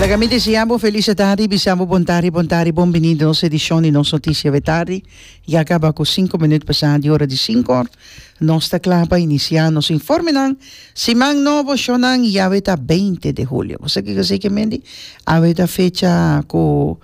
Laga mi desea bo felicidad y bisa bo bon tarde, bon tarde, bon bini den nos edicion di nos noticia de tarde. Ya caba cu cinco minuut pasa di ora di cinco. Nos ta cla pa inicia nos informenan. Siman nobo, shonan y awe ta beinti de hulio. Bo sa kico a sey mende? Awe ta fecha cu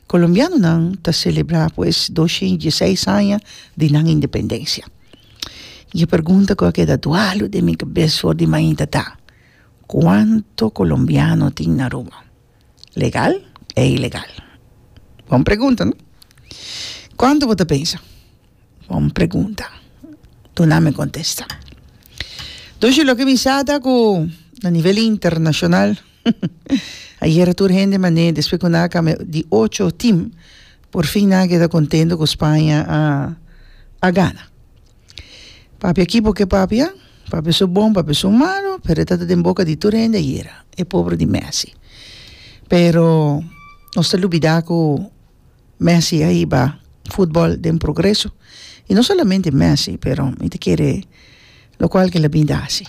colombianonan ta celebra pues doshi y dieseis aña di nan independencia. Y e pregunta cu a keda dualo den mi cabes for di mainta ta. Cuanto colombiano tin na Aruba? Legal e ilegal? Bon pregunta no? Cuanto bo ta pensa? Bon pregunta. Duna mi contesta. Doshe loke mi sa ta cu na nivel internacional ayer tur hende mane despues cu nan a cambia di ocho team por fin nan a keda contento cu Spanje a gana. Papia ki bo ke papia papia su bon papia su malu pero e ta den boca di tur hende ayera e pobre di Messi pero nos ta lubida cu Messi a hiba football den progreso y no solamente Messi pero mi ta kere lo cual ke la bini ta haci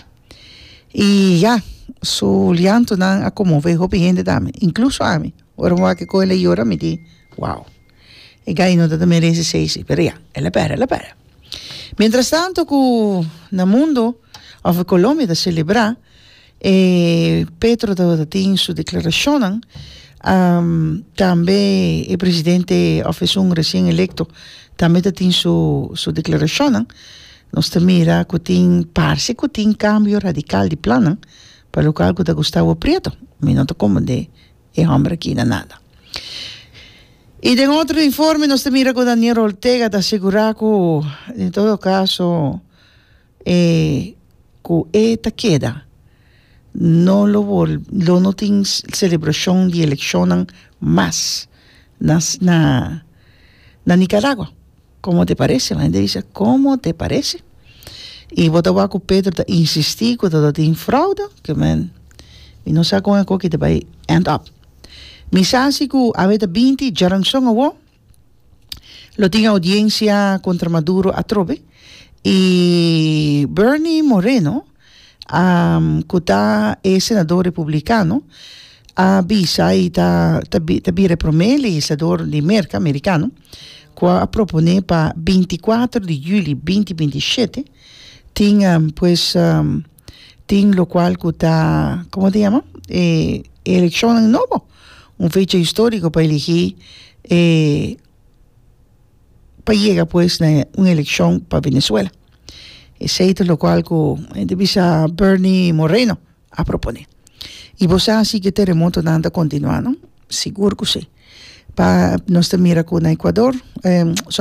y ya su liantonan a conmove hopi hende tambe incluso ami ora mi wak coge la yora mi di wao E gay no ta ta merece ser así, pero ya, el a perde, el a perde. Mientras tanto cu na mundo, of e Colombia ta celebra, e Petro tabata tin su declaracionnan, tambe e presidente of esun recien electo tambe ta tin su su declaracionnan, nos ta mira cu tin, parce cu tin cambio radical di plannan, pa local cu ta gusta awa prieto, mi no ta comprende. e homber kina nada. Y den otro informe nos ta mira cu Daniel Ortega ta asegura cu en todo caso e cu e ta keda no lo wol lo no tin celebracion di eleccionnan mas na na Nicaragua. Como te parece? La hende bisa, Como te parece? Y bo ta wak cu Pedro ta insisti cu ta tin fraude? Ke men, mi no sa con ecoki ta bay end up. Mi sa si cu awe ta binti djaranzon awo, lo tin audiencia contra Maduro atrobe y Bernie Moreno, cu ta e senador republicano a bisa y ta ta ta bira e prome legislador di Merca Mericano cu a propone pa binti y kuater di juli binti binti y shete tin pues tin locual cu ta como ta yama e e eleccionnan nobo un fecha historico pa eligi e pa yega pues na un eleccion pa Venezuela. Esey ta locual cu ente bisa Bernie Moreno a propone. Y bo sa si ki terremotonan ta continua no? Sigur cu si. Pa nos ta mira cu na Ecuador,